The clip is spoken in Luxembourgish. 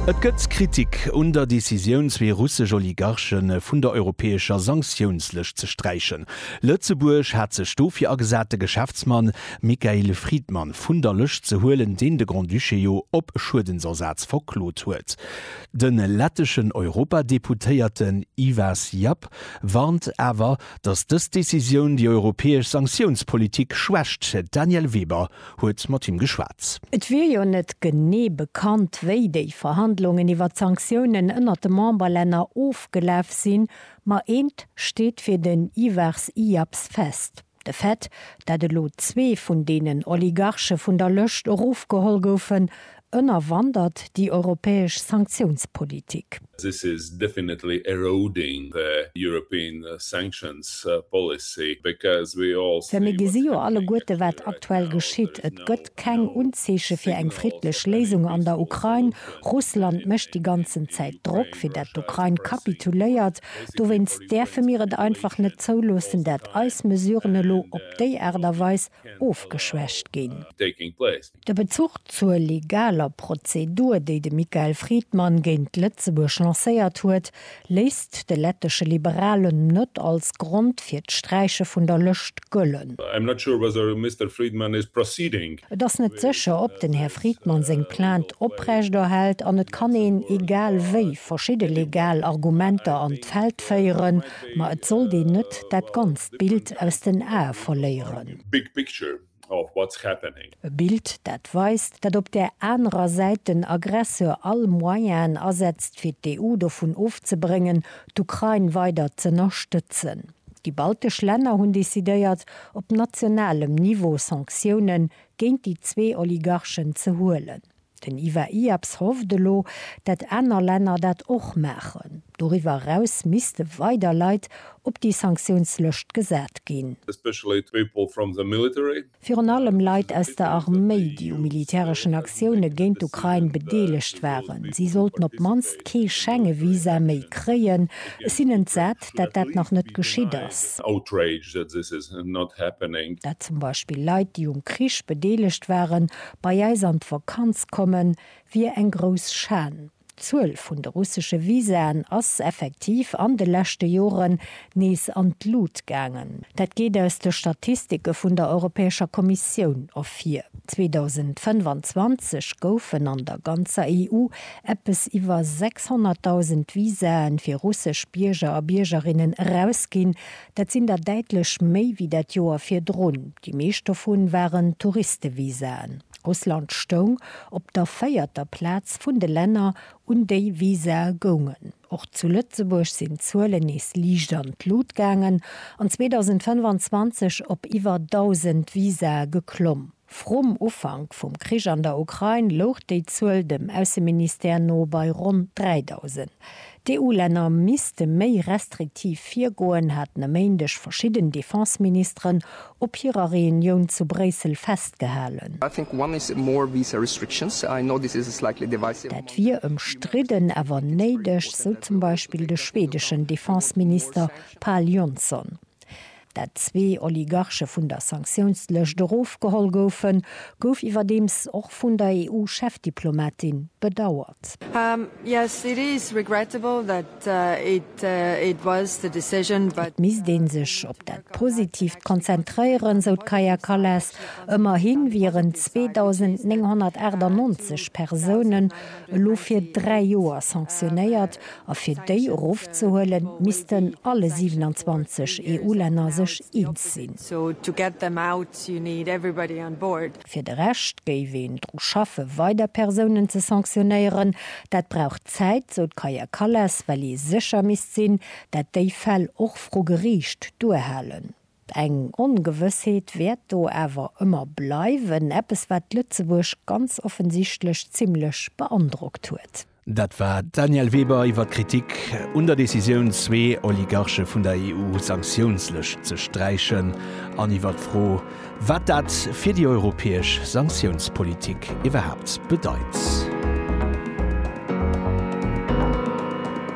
Et gëtt Kritik un der Decisioun, zwee russesch Oligarche vun der europäescher Sanktiounslëscht ze sträichen. Lëtzebuerg hat sech dofir agesat, de Geschäftsmann Michail Friedman vun der Lëscht ze huelen, deen de Grand-Duché jo op Schuedensersaz verklot huet. De letteschen Europadeputéierten Ivars Japp warnt awer, Datt dës Decisioun déi europäesch Sanktiounspolitik schwächt. D'Danièle Weber huet mat him geschwat. Et wier jo net genee bekannt, wéi déi Verhandlungen iwwer d'Sanktiounen ënnert de Memberlänner ofgelaf sinn. Ma eent steet fir den Ivars Iaps fest, De Fait, dat elo zwee vun deenen Oligarche vun der Lëscht erofgeholl goufen, Ënnerwandert déi europäesch Sanktiounspolitik. This is definitely eroding the European sanctions policy because we all see what's happening actually right now. Well mir gesi jo alleguerte wat aktuell geschitt. Et gëtt keng Unzeeche fir eng friddlech Léisung an der Ukrain. Russland mécht déi ganzen Zäit Drock fir dat d'Ukrain kapituléiert. Dowéinst däerfe mir et einfach net zouloossen dat eis Mesuren elo op déi Aart a Weis ofgeschwächt ginn. De Bezuch zur legaler Prozedur, déi de Michael Friedmann géint Lëtzebuerg lancéiert huet, léisst de lettesche Liberalen net als Grond fir d'Sträiche vun der Lëscht gëllen. Et ass net sécher, ob den Här Friedmann seng Plainte oprechterhält an et kann een, egal wéi, verschidde legal Argumenter an d'Feld féieren, ma et sollt een net dat ganzt Bild aus den Ae verléieren. of what's happening. E Bild dat weist, dat op där anerer Säit den Aggresseur all Moyenen asetzt fir d'EU dovun ofzebréngen d'Ukrain weider z'ënnerstëtzen. Déi baltesch Länner hunn decidéiert op nationalem Niveau Sanktiounen géint déi zwee Oligarchen ze huelen. Den Ivar Iaps hofft elo, dat aner Länner dat och maachen. Doriwwer eraus misste weider Leit op déi Sanktiounslëscht gesat ginn. Virun allem Leit aus der Arméi, déi u militäreschen Aktioune géint d'Ukrain bedeelegt waren. Si sollten op d'mannst kee Schengevisa méi kréien. Ech sinn entsat, dat dat nach net geschitt ass. Dat zum Beispill Leit, déi um Krich bedeelegt waren, bei eis an d'Vakanz kommen, wier eng grouss Schan. D'Zuel vun de russesche Visaen ass effektiv an de leschte Joren nees an d'Lut gaangen. Dat geet aus de Statistike vun der Europäescher Kommissioun ervir. 2025 goufen an der ganzer EU eppes iwwer 600.000 Visae fir russesch Bierger a Biergerinnen erausginn, Dat sinn der däitlech méi wéi dat Joer virdrun. Déi meescht dovun waren Touristevisaen. Russland stoung op der véierter Plaz vun de Länner, un déi Visae goungen. Och zu Lëtzebuerg sinn d'Zuelen nees liicht an d'Lut gaangen an 2025 op iwwer 1.000 Visae geklomm. Vrum Ufank vum Krich an der Ukrain louch déi Zuel dem Ausseministère no bei ronn 3.000. D'EU-Länner misste méi restriktiv virgoen, haten e Méindeg verschidden Defense-Ministeren op hirer Reunioun zu Bréissel festgehalen. Dat wier ëmstridden, awer néideg, sou zum Beispill de schwedeschen Defense-Minister Pal Jonsson. Datt zwee Oligarche vun der Sanktiounslëscht erofgeholl goufen, gouf iwwerdeems och vun der EU-Chefdiplomatin bedauert. Et misst ee sech op dat Positiivt konzentréieren, sou d'Kaja Kallas. Ëmmerhi wieren 2.998 Persounen elo fir dräi Joer sanktionéiert, A fir déi erofzehuelen, missten alle 27 EU-Länner sech eens sinn. Fir de Rescht géif een dru schaffe weider Persounen ze sanktionéieren. Dat brauch Zäit, sou d'Kaja Kallas, well ee sécher misst sinn, dat déi Fäll och vru Geriicht duerhalen. Eng Ongewëssheet wäert do awer ëmmer bleiwen, eppes wat Lëtzebuerg ganz offensichtlech zimmlech beandrockt huet. Dat war d'Danièle Weber iwwer d'Kritik un der Decisioun, zwee Oligarche vun der EU-Sanktiounslëscht ze sträichen an iwwer d'Fro, wat dat fir déi europäesch Sanktiounspolitik iwwerhaapt bedeit.